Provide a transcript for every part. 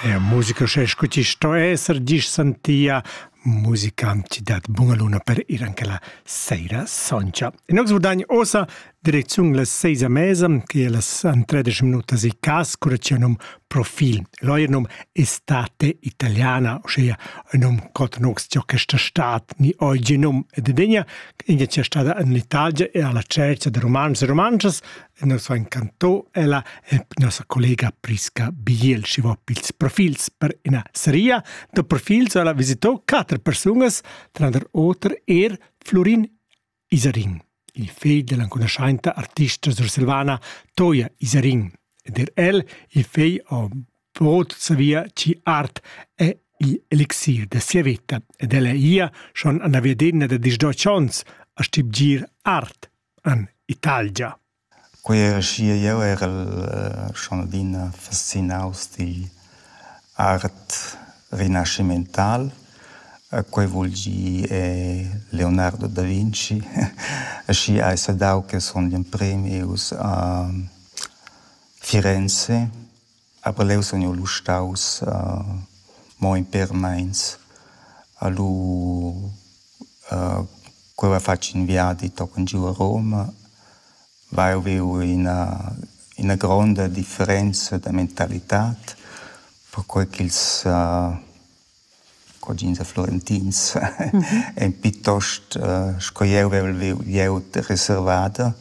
Eir musica sche scu ti sto esser disch santia musicanti dat bunga luna per ir anche la seira soncha. In nox vurdagn osa direcziun la seisa mesa, che è las antredisch minutas i cas, curatia num profil. L'oier num Estate Italiana, ossia un num cot nox tia questa stat ni oggi num ed degna, ingia tia stada in l'Italia e alla cercia de romanus e romances, e nos ha incanto ella e nossa collega Prisca Biel chi va pils profils per ina seria da profils ella visitò quater persunas tranter oter er Florin Isarin il fegl dell'anconoscienta artista sursilvana Toia Isarin ed er el il fegl ha bod savia chi art è il elixir da sia veta ed ella ia schon an la vedena da disdoccions a stibgir art En Italgia. Quei era schia, jeu erel schon adina fascinaus digl art rinascimental. Quei vul gir Leonardo da Vinci. Aschia hai saidau che sun gl'emprem ius a Firenze Aber leu sun jeu lu staus mo in pêr meins a lu cu avev fatg ün viadi tochen giu a Roma, vai e viu ina ina gronda differenza da mentalitad perquai ch'ils cugins e florentins ein piuttost sco jeu vevel viu glieud reservada.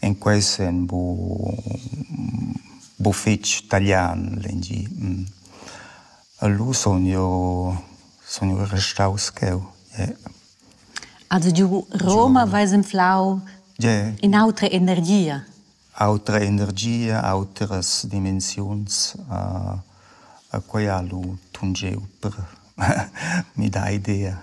En quei senn bu bu fetg talian lengi. Lu sun jeu sun jeu restaus cheu. Also giu Roma veis inflau in'autra energia. Autra energia, autras dimensiuns, a quai ha lu tungiu per midar idea.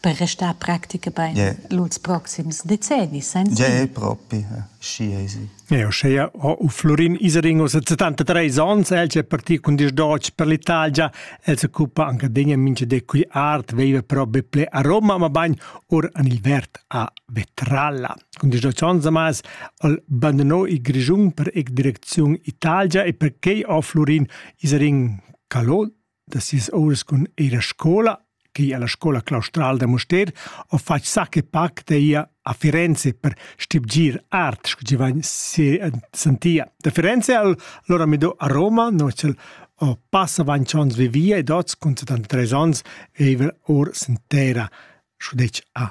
Per restar practica bein lur proxims decennis senza? Ja, propi, schi esi. Uschea ho Florin Isering ussa 73 ans, el è partì cun dis d'oc per l'Italia, el s'occupa anche degna mincha de cui art, veiva però be ple a Roma, ma bagn or an il vert a Vetralla. Cun discussiuns amas al bandonò il Grischun per ec direcziun Italia e perquei ha Florin Isarin calò da sis ouras cun ir a scola che alla scola claustral da Mustér ho fatg sacche pac da ir a Firenze per stibgir art, sco chi vain sentia. Da Firenze al lora midò a Roma, no ch'el ho passa ventg ons vivia ed oz cun 73 ons veiva or sen terra, sco detg a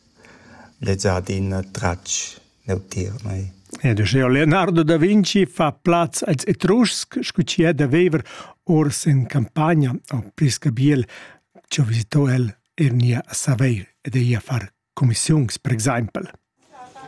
Lezza ha adina tratg neutier mei. Ed uschea Leonardo da Vinci fa plaz als Etruscs scu chi ha da viver ors in campagna o pli scabiel ch'ho visito el er nia a Saveir ed eir a far cumissiuns, per exaimpel.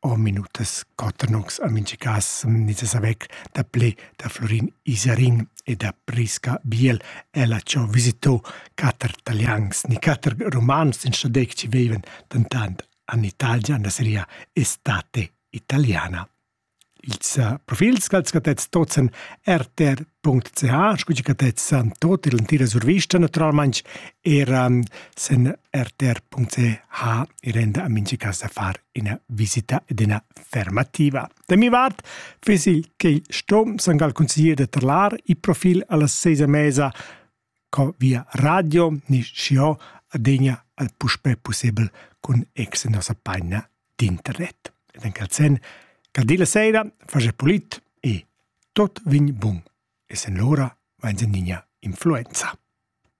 o minutas cotanox a mincha cas nizzas avec daplé da Florin Isarin e da Prisca Biel. Ella cho visitò quatter talians, ni quatter romans in stadec ci vevan dentant an Italia na seria estate italiana. Ils uh, profils ch'als catets tozzen rtr.ch, scu chi catets san tot il entira survista naturalmaing, eran sen rtr.ch e renda a mincha casa far ina visita ed ina fermativa. Da mi vart fesi che il stom sang al consiglier da trlar il profil alla sesa mesa co via radio ni scio adegna al puspe possibel con ex nossa pagina d'internet. Ed en calzen, caldi la sera, face polit e tot vin bun. E sen l'ora va in niña influenza.